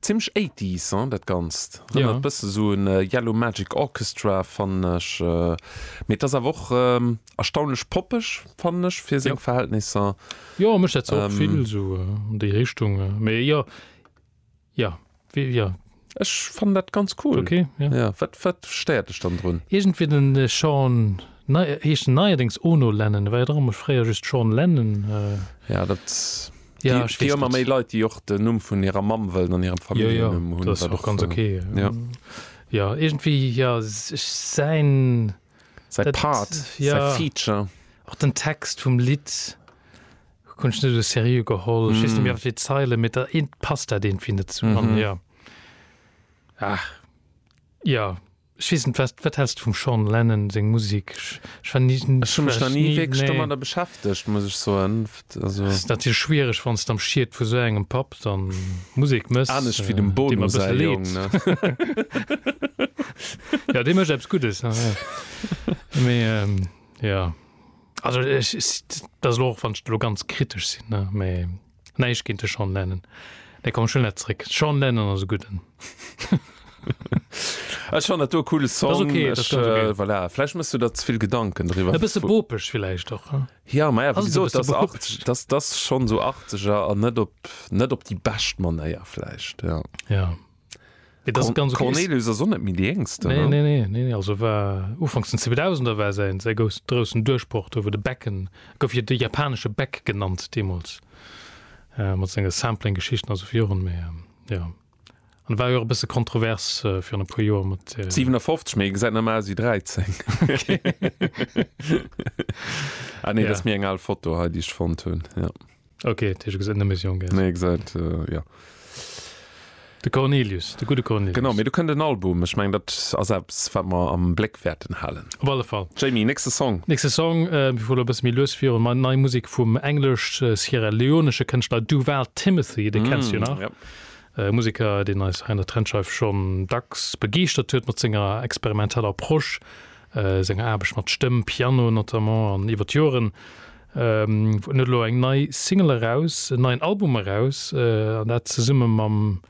Zimlech eighties hein dat ganzt, rënnert bësse sou un Yellow Magic Orchestra fannen ech, mee et ass awer och erstaunlech poppeg fannen ech fir seng Verhältnisser. Jo mech dat och vill sou an déi Richtung, mee jo jo jo. Ech fannen dat ganz cool. Ok ja. Wat stéiert dech dann drun? Iergendwéi den Sean, heescht en neierdéngs Ono Lennon, war jo och ëmmer fréier just Sean Lennon. Ja dat. Ja, ech weess net. Leit déi och den Numm vun hirer Mamm wëllen an hirem Familljennumm hunn. Dat ass och ganz ok. Jo iergendwéi jo ech säin. Säi Part, säi Feature. Och den Text vum Lidd hunn ech net esou seriö geholl. Ech weess net méi wat fir déi Zeilen, mee passt dat iergendwéi net zesummen. Jo. Ech weess net, wat, wat häls de vum Sean Lennon seng Musek? Ech, ech war ni, ech Ech hu mech war nach ni ni, wierklech nee. domadder beschäftegt, muss ech soen. F, Also. Ass natierlech schwiereg, wann s de am Schiet vu sou engem Papp dann Musek mëss, Anescht wéi dem dee Bono mer säi bësse Jong, leed. ne? Jo, dee mécht eppes Guddes, ja, ja. Mee, ähm, jo. Also ech, s, dat ass elo och, wann ech elo ganz kritesch sinn, ne, mee Näischt géint de Sean Lennon. Nee, komm, ech huelen dat zréck. Sean Lennon ass e gudden. Ech fannen dat do e coole Song. Dat ass okay, dat ass ganz okay. Ech, äh, voilà, vläicht mëss du der ze vill Gedanken driwwer. E bësse bopeg villäicht och, hm? Ja, ma ja, wéi Ass et e gesot, bësse dass bopeg? 80 dass dass schonn esou 80er an net op net op déi bescht Manéier vläicht, ja. Ja. Mee dat ass ganz okay. D'Cornelius ass och net méi déi Jéngsten, Nee, ne? nee, nee, nee, also war ufanks den Zweedausender war säin, säi gous, groussen Duerchbroch do, wou de Becken, e gouf jo de japanesche Beck genannt deemools, äh, mat senge Sampling-Geschichten, also fir Joren, mee ähm, jo. An war jo och e bësse kontrovers äh, virun e puer Joer mat. Äh, 57, mee e gesäit nach ëmmer aus ewéi 13. Ah nee, dat ass Ja. méi eng al Foto hei, déi ech fonnt hunn, jo. Okay, das ist eine Mission. Nee, gesagt, äh, ja. De Cornelius, de gute Cornelius. Genau, mir du kënnt den Album. Ech meng dat a selbst wat mer am Bléck wäerten halen. Op alle Fall. Jamie, nächste Song. Nächste Song äh, vu der bësse méi lues fir mat nei Musik vum englesch äh, Sierra Leonesche Kënschtler Duval Timothy, de mm, kennst du nach. Ja. Äh, Musiker, den eis Heiner Trendscheif schon dacks begeeschtert huet mat senger experimenteller Prosch, äh, senger Aarbecht mat Stëmm, Piano notamment an iwwer d'Joren. En huet elo eng nei Single eraus, en neien Album eraus an dat zesumme mam,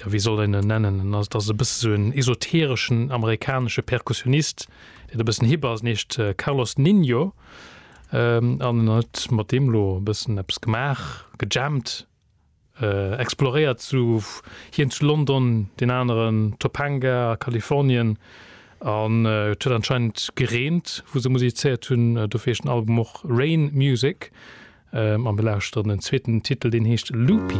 jo wéi soll een en nennen, en ass, et ass e bësse sou en esotereschen amerikanesche Perkussionist, deen e bëssen hip ass, en heescht Carlos Ninho an en huet mat deem elo e bëssen eppes gemaach, gejammt. exploréiert zu, hien zu London, deen aneren Topanga a Kalifornien an et huet anscheinend gereent wou se musizéiert hunn, dofir heescht den Album och Rain Music a mir lauschteren den zweeten Titel, deen heescht Loopy.